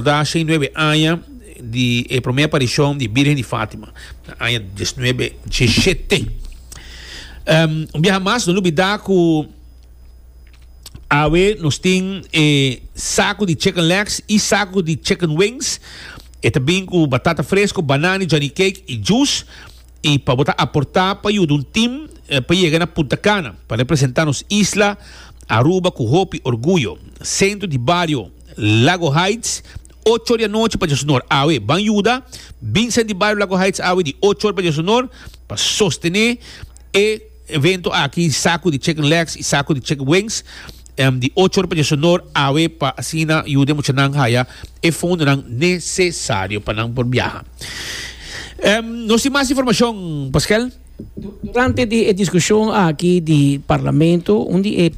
Dá shei nuebe aña di e promé aparishon di Bírgen di Fátima, na aña dies nuebe djeshete. Un biaha mas no lubidá ku awe nos tin e saku di chicken legs i saku di chicken wings. E ta bin ku batata fresko, banana i Johnny Cake i jus. I pa bo ta aportá pa yuda un tim pa yega na Punta Cana pa representá nos isla Aruba ku hopi orguyo. Sentro di bario. Lago Heights, ocho or di anochi pa djasonor. Awe, ban yuda binse di bario Lago Heights awe di ocho or pa djasonor pa sostene e evento aki, saku di chicken legs y saku di chicken wings, di ocho or pa djasonor awe pa asina yuda e muchanan haya e fondonan necesario pa nan por biaha. Nos tin mas informacion, Pasquel. Durante di e discusion aki di Parlamento un di e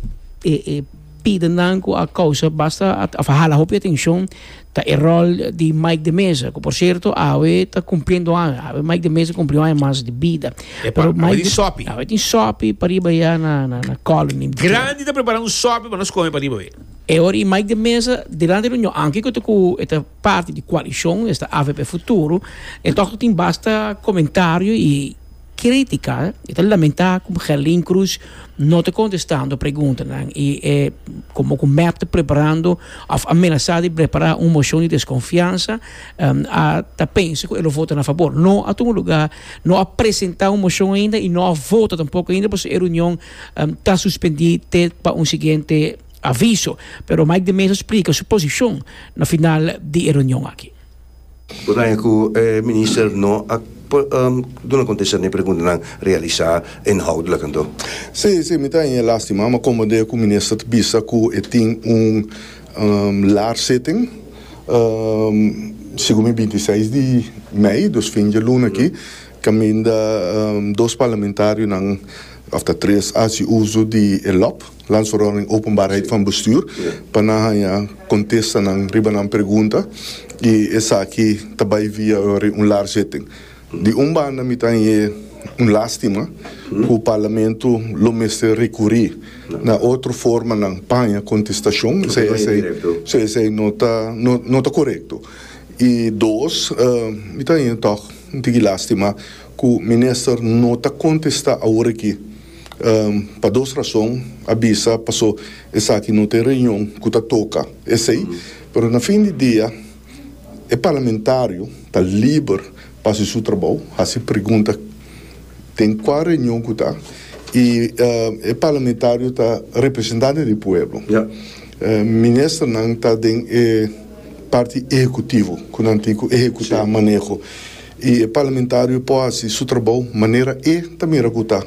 Pidenan ku a kousa basta òf a hala hopi atenshon ta e ròl di Mike de Meza, ku por sierto awe ta kumpliendo aña, awe Mike de Meza kumpli un aña mas di bida. Epa, awe tin sòpi. Awe tin sòpi pariba ya na Colony. Grandi ta prepara un sòpi pa nos kome pariba awe. E ora i Mike de Meza delante reunion anke kota ku e ta parti di koalishon, esta avp Futuro, e tòg tin basta komentario i. Crítica, e ta lamentá cu Gerlin Cruz no ta contestando preguntanan y e como cu mep ta preparando of amenasá di prepara un mocion di desconfiansa a ta pensa cu e lo vota na fabor. No a tuma lugá, no a presentá un mocion ainda y no a vota tampoco ainda pasobra e reunion ta suspendí te pa un siguiente aviso. Pero Mike de Meza splica su posicion na final di e reunion aki. Bo ta haña ku e minister no a duna kontesta na e preguntanan realisá inhoudelijk anto? Sí, sí, mi ta haña e lástima, ma komo de ku minister ta bisa ku e tin un laar zitting, segun mi binti seis di mei, dus fin dje luna aki, kaminda dos parlamentarionan òf ta tres a hasi uso di e lòp. Landsverordening Openbaarheid van Bestuur pa nan haña contestanan riba nan pregunta y esaki ta bay via ori un lar zitting. Di un banda mi ta hañ'e un lastima cu Parlamento lo mester recuri na otro formanan pa haña contestacion, esey esey si esey no ta no ta corecto y dos mi ta hañ'e tok un tiki lastima Ku minister no ta kontestá awor aki pa dos rason, a bisa paso esaki no ta e reunion ku ta toka esei, pero na fin di dia e parlamentario ta liber pa hasi su trabou, hasi pregunta den kua reunion ku ta i e parlamentario ta representante di pueblo. Ministernan ta den e parti ehekutivo ku nan tin ku ehekutá maneho. I e parlamentario por hasi su trabou manera e ta mira ku ta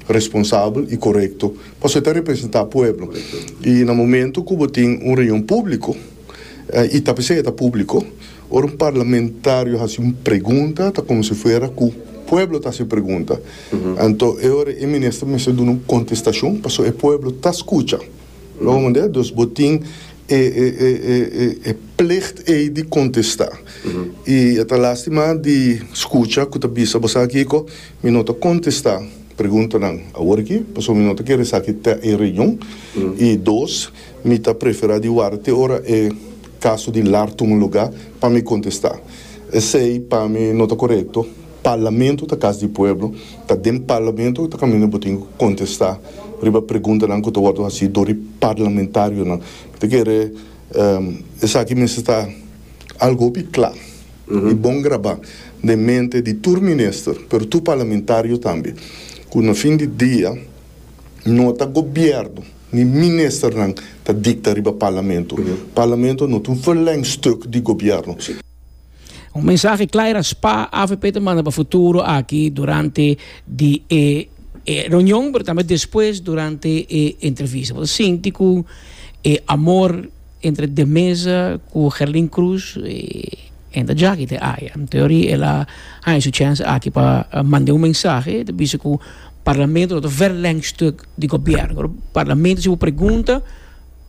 responsabel i korekto, pasobra e ta representá pueblo. I na momento ku bo tin un reunion públiko, i ta pesei e ta públiko, ora un parlamentario hasi un pregunta ta komo si fuera ku pueblo ta hasi e pregunta. Anto e ora e minister mester duna un kontestashon, pasobra e pueblo ta skucha. Loonde, dus bo tin e e plicht ei di kontestá. I e ta lástima di skucha ku ta bisa bo, Sa kiko? Mi no ta kontestá preguntanan awor aki, pasobra mi no ta kere esaki ta e reunion. I dos, mi ta preferá di ward te ora e kaso di lar tuma lugá pa mi kontestá. Esei pa mi no ta korekto. Parlamento ta Cas di Pueblo, ta den Parlamento ta kaminda bo tin ku kontestá riba preguntanan ku ta wòrdu hasi dor e parlamentarionan. Mi ta kere esaki mester ta algu hopi kla i bon grabá den mente di tur minister, pero tur parlamentario tambe, ku na fin di dia no ta gobièrnu ni ministernan ta dikta riba Parlamento. Parlamento no ta un verlengstuk di gobièrnu. Un mensahe cla y raspa avp ta manda pa futuro aki durante di e e reunion pero tambe despues durante e entrevista bo ta sinti cu e amor entre de mesa cu Gerlin Cruz hen ta jaki te aya teoria el a haya su chance aki pa mande un mensahe ta bisa cu parlamento lo ta ver lengstuk di gobierno parlamento si bo pregunta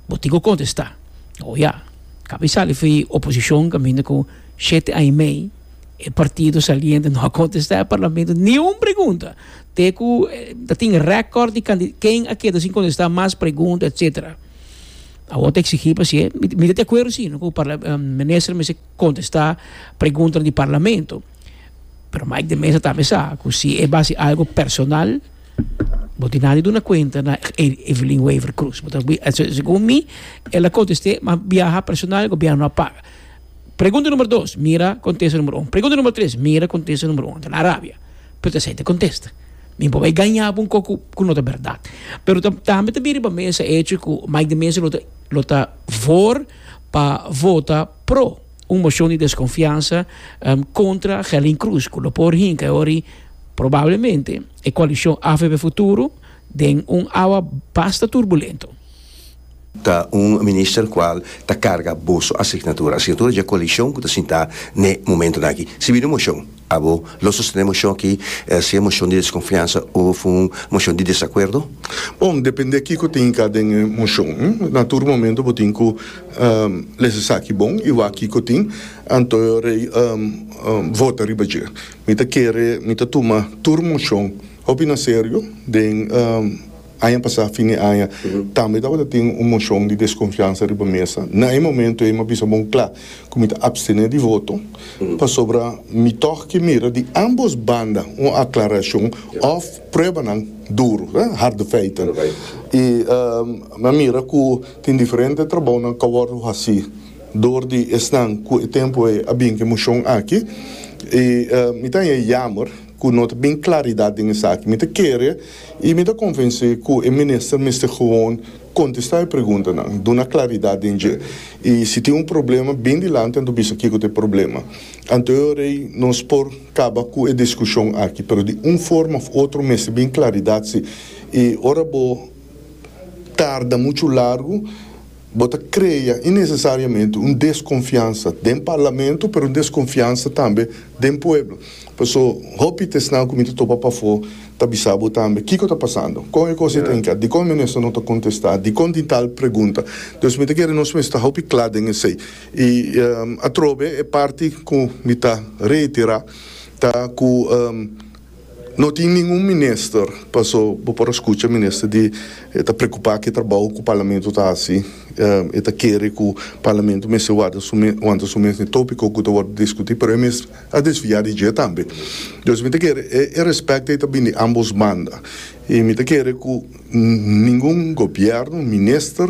Bo tin ku kontestá. O ya. Kabi sali for e oposishon kaminda ku shete aña i mei e partido saliente no a kontestá e parlamento ni un pregunta, te ku ta tin rèkòrt di kantidad ken a keda sin kontestá mas pregunta etsetera. Awor ta eksigí pa si'é. Mi ta di akuerdo si ku minister mester kontestá pregunta di parlamento, pero Mike de Meza tambe sa ku si e base algu personal. Bo tin nada di duna cuenta na Evelyn Wever Croes. Bo ta win, según mi, el a contesté, ma biaha personal gobierno a paga. Pregunta numero dos, mira contesta numero un. Pregunta numero tres, mira contesta numero un. Ta na Arabia, pero ta esei ta contesta. Mi bo bay gaña bo un kos cu no ta berdad. Pero ta, tambe ta bira riba mesa e hecho cu Mike de Meza lo ta, lo ta voor pa vota pro. un moshon di deskonfiansa kontra Gelin Cruz ku lo por hinka e ora i probablemente e koalishon AVP Futuro den un awa basta turbulento. Ta un minister kual ta karga boso asignatura, asignatura di e koalishon ku ta sintá n'e momentunan aki. Sibi nu moshon. Abo lo sostené moshon akí si e moshon di deskonfiansa òf un moshon di desakuerdo? Bon, dependé kiko tin ka den e moshon. Na tur momentu bo tin ku lesa esaki bon i wak kiko tin, anto e ora ei vota riba dje. Mi ta kere mi ta tuma tur moshon hopi na serio den. Aña pasá fin di aña tambe tabata tin un moshon di deskonfiansa riba mesa. Na e momento ei mi a bisa bon kla ku mi ta apstené di voto pasobra mi tòg ke mira di ámbos banda un aklarashon òf pruebanan duru, harde feiten. I mi a mira ku tin diferente trabounan ku a wòrdu hasí dor di esnan ku e tempu ei a bin ku e moshon aki i mi ta haña yamer. Cu no ta bin claridad den esaki. Mi ta kere y mi ta convence cu e Minister mester gewoon contesta e preguntanan, duna claridad den dje. Y si tin un problema, bin dilanti anto bisa kico ta e problema. Anto e orei nos por caba cu e discusion aki. Pero di un forma of otro mester bin claridad si. Y ora bo tarda mucho largo. Bo ta krea inesesariamente un desconfiansa den parlamento pero un desconfiansa tambe den pueblo. Paso hopi testnan cu mi ta topa pafo ta bisa bo tambe kico ta pasando, con e cosa y ta hinca, dicon e minister no ta contesta, dicon tin tal pregunta. Dus mi ta kere nos mes ta hopi cla den esey. Y atrobe e parti cu mi ta reitera ta cu. No tin ningun minister, paso bo por a skucha minister di e ta preokupá ku e tarbou ku parlamento ta hasi. E ta kere ku parlamento mester warda su mes, aguanta su mes den tópiko ku ta wòrdu diskutí, pero e mester a desviá di dje tambe. Entonces mi ta kere e e respèkto ei ta bini di ámbos banda i mi ta kere ku ningun gobièrnu, minister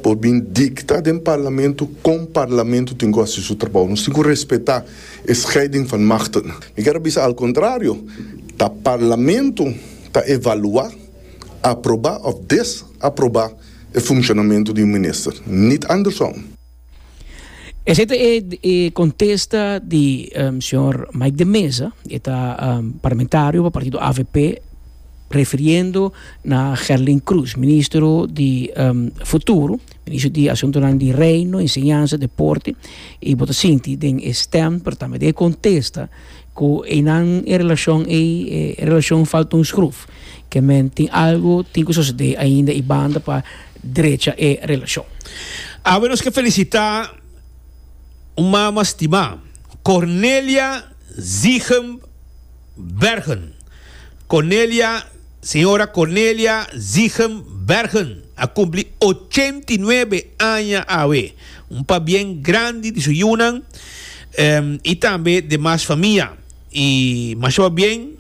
por bin dikta den parlamento kon parlamento tin ku hasi su tarbou. Nos tin ku respetá. e scheiding van machten. Mi ker a bisa al contrario, ta Parlamento ta evalua, aproba of des aproba e funcionamento di un minister, nit Anderson. Esey ta e contesta di señor Mike de Meza, e ta Parlamentario pa partido avp, refiriendo na Gerlin Croes, Ministro di Futuro. Ministro di Asuntunan di Reino, Enseñansa, Deporte, y bo ta sinti den e stem, pero tambe den e contesta, cu einan e relacion ei, e relacion falta un schruf. Ke men tin algo tin cu sosode ainda y banda pa drecha e relacion. Awe nos ke felicita un mama stima, Cornelia Zieghem Bergen. Cornelia. Señora Cornelia Zieghem Bergen a cumpli ochenta i nuebe aña awe. Un pabien grandi di su yiunan y tambe de mas famia y masha pabien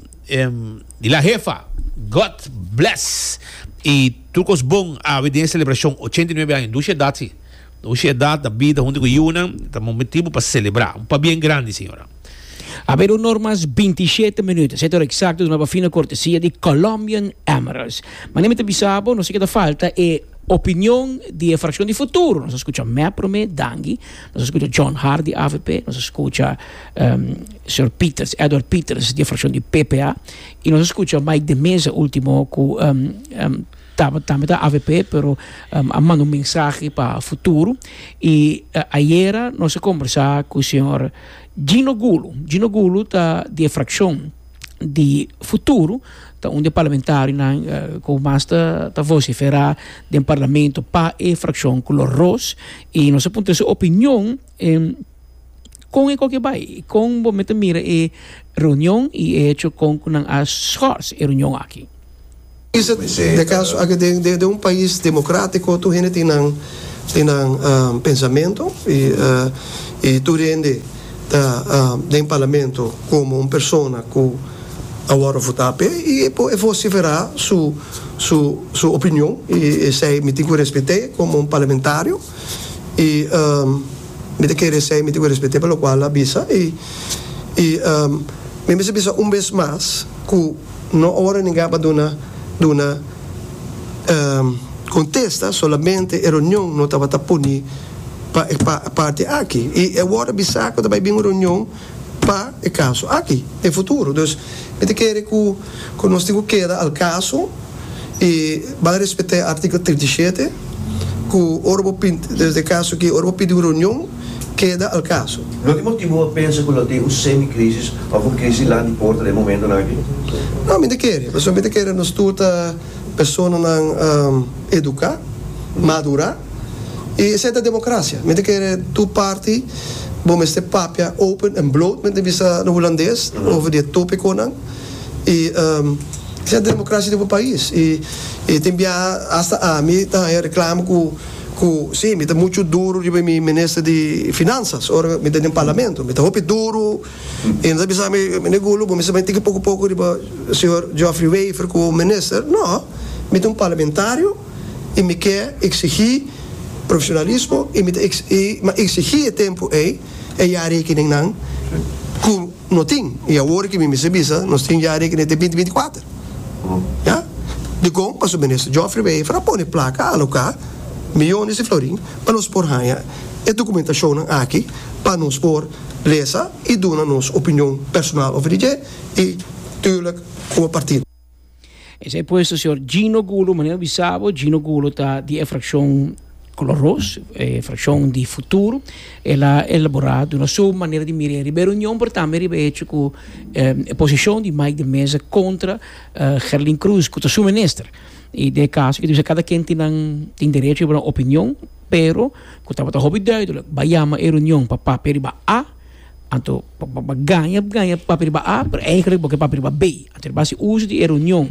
di la hefa. God bless y tur cos bon awe den e celebracion ochenta i nuebe aña. Dushi edad si. Un shedad na bida huntu cu yiunan ta mometibu pa celebra. Un pabien grandi, señoran. Aber un or mas binti i shete minuut, sete ora exacto, nos a bafin na cortesia di Colombian Amarals. Mane mi ta bisa bo, no sekier ta falta e opinion di e fraccion di futuro. Nos a scucha mep prome, dangi. Nos a scucha John Hart di avp, nos a scucha Sir Peters, Edward Peters di e fraccion di ppa, y nos a scucha Mike de Meza ultimo cu Tambe ta avp pero a manda un mensahe pa futuro y ayera nos a conversa cu señor Gino Gulu, Gino Gulu ta di e fraccion di futuro ta un di e parlamentarionan cu mas ta vocifera den parlamento pa e fraccion color roos y nos a puntra su opinion. Kon e koke bai? Kon bo me ta mira e reunion i e hecho kon ku nan a schors e reunion aki? Is e kaso aki den un pais demokratiko tur hende tin nan tin nan pensamentu i tur hende ta den parlamento komo un persona ku a wòrdu votá p'e i e por vosiferá su su su opinion i esei mi tin ku respet'e komo un parlamentario. i mi ta kere esei mi ta cu e respete pa locual a bisa i i mi a mester bisa un bes mas cu no ora ni gaba duna duna contesta solamente e reunion no tabata puni pa e pa e parti aki i awor a bisa cu ta bay bin un reunion pa e kaso aki den futuro. Dus mi ta kere ku ku nos tin ku keda al kaso i ban respet'é e artíkulo trinta i shete ku ora bo desde e kaso aki ora bo pidi un reunion keda al kaso. Loke motibu bo pensa ku lo tin un semi krisis òf un krisis lang di por ta den momentonan aki? No, mi ta kere pasobra mi ta kere nos tur ta personanan eduká, madurá. y esey ta democracia. Mi ta kere tur parti bo mester papia open and bloot mi ta bisa na Hulandes over di e topiconan y esey ta democracia den bo pais y y tin biaha hasta ami ta haya reclamo cu cu si mi ta mucho duro riba mi minister di finanzas ora mi ta den parlamento mi ta hopi duro y nan ta bisa mi Meneer Gulu bo mester bay tiki poco poco riba señor Geoffrey Wever como minister no mi ta un parlamentario y mi ke exigi profesionalismo y mi ta ma exigi e tempo ey e ya rekening nan cu no tin y awor ke mi mester bisa nos tin ya rekening te binti binti kuater ya dikon pasobra Minister Geoffrey bay a fala pone placa aloca miyones di florin pa nos por haya e documentacion nan aki pa nos por lesa y duna nos opinion personal over di dje y tuurlijk como partido. Esei pues ta señor Gino Gulo, manera mi bisa bo, Gino Gulo ta di e fraccion color roos, e fraccion di futuro, el a elabora duna su manera di mira e riba e reunion, pero tambe riba e hecho cu e posicion di Mike de Meza contra Gerlin Cruz, cu ta su minister, y den e caso yo ta bisa cada quien tin nan tin derecho riba nan opinion, pero cu tabata hopi duidelik, bai yama e reunion pa papia riba a. Anto pa gaña gaña papia riba A, pero eigenlijk bo ke papia riba B. Anto riba hasi uso di e reunion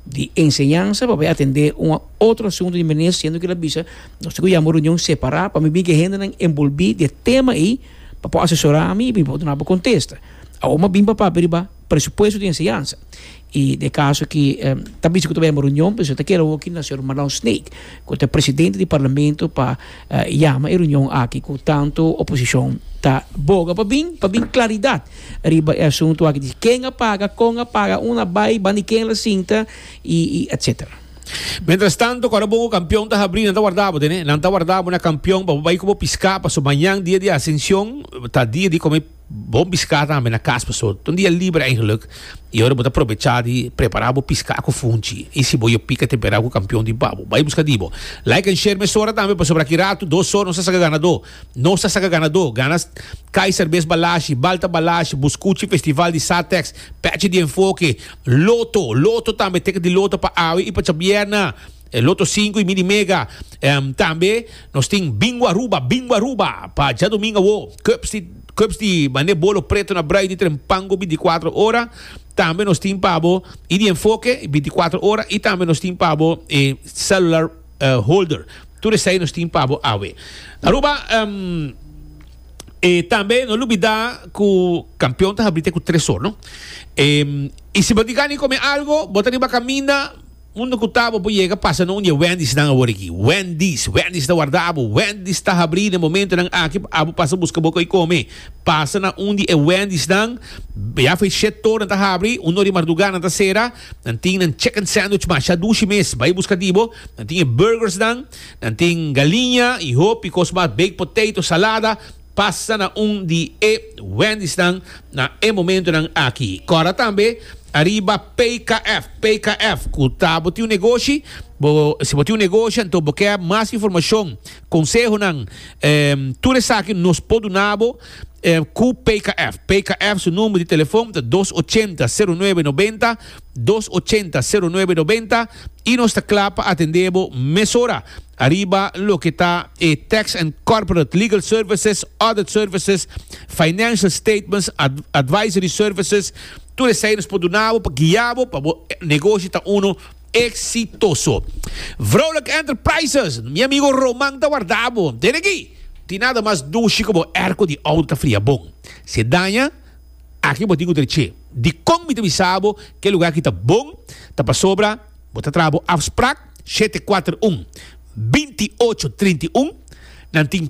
di enseñansa pa bai atende un otro asunto di menes, siendo kila bisa nos tin ku yama reunion separá pa mi bin ke hendenan enbolbí den e tema ei pa por asesorá mi i pa mi por duna bo kontesta. Awor mi a bin pa papia riba presupuesto di enseñansa. Y e caso aki ta bisti cu ta bay na reunion pero ta kere hopi na señor Marlon Snaek cu ta presidente di Parlamento pa yama e reunion aki cu tanto oposicion ta boga pa bin pa bin claridad riba e asunto aki di ken a paga con a paga un a bay bandi ken la sinta y y etcetera. Mientras tanto cu ora bo campeon ta habri nan ta warda bo tene nan ta warda bo na campeon pa bo bay cu bo pisca pasobra mañan dia di Ascension ta dia di come Bo biska tambe na kas pasobra ta un dia liber eigenlik i ora bo ta probecha di prepara bo piska ku funchi i si bo yo pika temperau ku kampion di babu bai buska di bo like and share mesora tambe pasobra aki ratu dos sor nos ta saka ganadó nos ta saka ganadó gana kai serbes balashi balta balashi buskuchi festival di satex pechi di enfoke loto loto tambe teken di loto pa awe i pa chabierna. E loto sinku i mini mega em tambe nos tin Bingo Aruba Bingo Aruba pa djadomingu awo cups di cups di bandé bolo preto na brai di tren pango binti kuater ora tambe nos tin pa bo i di enfoke binti kuater ora i tambe nos tin pa bo e cellular holder tur esei nos tin pa bo awe Aruba em e tambe no lubida ku kampion ta habri te ku tres or no em i si bo di gana i kome algo bo ta riba kaminda. Mundo ku tabo por yega pasa na un dje Wendy's nan awor aki. Wendy's, Wendy's ta warda abo. Wendy's ta habrí den momentonan aki pa abo pasa buska bo ko'i kome. Pasa na un di e Wendy's nan, ya for e shet tornan ta habri, un or di mardugá nan ta sera. Nan tin nan chicken sandwich masha dushi mes, bai buska di bo. Nan tin e burgers nan, nan tin galiña i hopi kos mas, baked potato, salada. Pasa na un di e Wendy'snan na e momentonan aki. Kòrda tambe ariba PKF. PKF ku ta bo tin un negoshi, bo si bo tin un negoshi anto bo kè mas informashon, konsehonan, tur esaki nos por duna bo ku PKF. PKF su number di telefon ta dos ochenta sero nuebe nobenta, dos ochenta sero nuebe nobenta, i nos ta kla pa atendé bo mesora. Ariba loke ta e Tax and Corporate Legal Services, Audit Services, Financial Statements, Advisory Services, tur esei nos por duna bo pa guia bo pa bo negoshi ta uno exitoso. Vrouwelijke Enterprises, mi amigo Roman ta warda bo. Den aki, tin nada mas dushi ku bo airco di auto ta fria bon. Si e daña, aki bo tin ku treche. Dikon mi ta bisa bo ku e luga aki ta bon, ta pasobra. Bo ta traha bo afsprak shete kuater un binti ocho trinta i un nan tin.